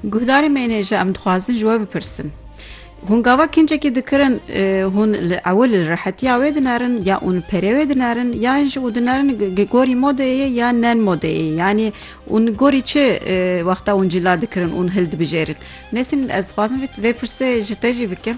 Guhdarê me ne ji em dixwazin ji we bipirsin. Hûn gava kincekî dikirin hûn li ew li rehetiya wê dinerin ya hûn perê wê dinerin ya ji û dinerin gorî modeyê ya nen modeyê yanî hûn gorî çi wexta hûn cila dikirin hûn hildibijêrin. Nesîn ez dixwazim vê pirsê ji te jî bikim.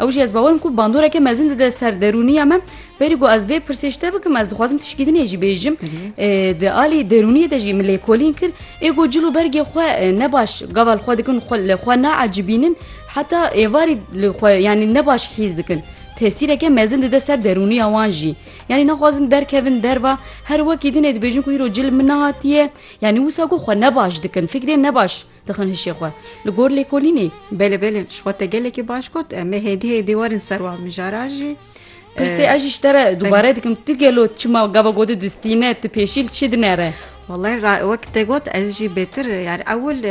Ew jî ez bawer im ku bandoreke mezin dide ser derûniya me. Berî ku ez vê pirsê ji te bikim ez dixwazim tu şikî dinê jî bêjim. Di alî derûniyê de jî min lêkolîn kir. Ê ku cil û bergê xwe ne baş gava li xwe dikin li xwe naecibînin heta êvarî li xwe yanî ne baş hîs dikin. Tesîreke mezin dide ser derûniya wan jî. Yanî naxwazin derkevin derva her wekî dinê dibêjin ku îro cil min nehatiye yanî wisa ku xwe ne baş dikin fikrên ne baş Dixin hişê xwe li gor lêkolînê. Belê belê ji xwe te gelekî baş got em ê hêdî hêdî werin ser wan mijara jî. Pirsê ez jî ji te re dubare dikim tu gelo çima gava gotê distîne tu pêşî li çi dinere? Wallay ra wek te got ez jî bêtir yani ewil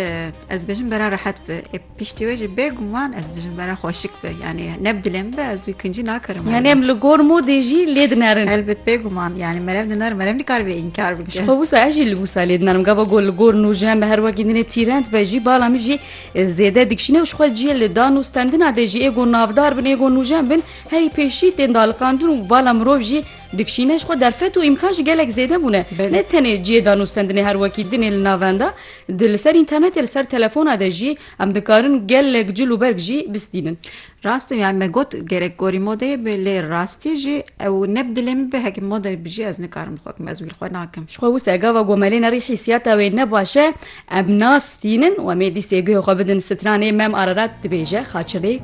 ez bêjim bera rehet bi e piştî wê jî bêguman ez bêjim bera xweşik bi yani ne bi dilê min bi ez wî kincî nakirim. Yani em li gor modê jî lê dinerin. Elbet bêguman yani merev dinar merev nikaribe înkar Ji xwe wisa ez jî li wisa lê dinarim gava got li gor nûjen be her wekî dinê tîrend be jî bala min jî zêde dikişîne û ji xwe ciyê li dan û stendina dê jî êgo navdar bin êgo nûjen bin herî pêşî tên daliqandin û bala mirov jî dikişîne ji xwe derfet û îmkan jî gelek zêde bûne ne tenê ciyê dan û stendinê her wekî dinê li navenda di li ser înternetê li ser telefona de jî em dikarin gelek cil û berg jî bistînin. Rast e yani me got gerek gorî modeyê be lê rastî jî ew ne bi dilê min be heke modeyê bijî ez nikarim xwe kim ez wî li xwe nakim. Ji xwe wisa gava gomelê ne rî hîsiyata wê ne baş e em nas tînin û em ê dîsê guhê xwe bidin stranê mem Ararat dibêje xaçilêk.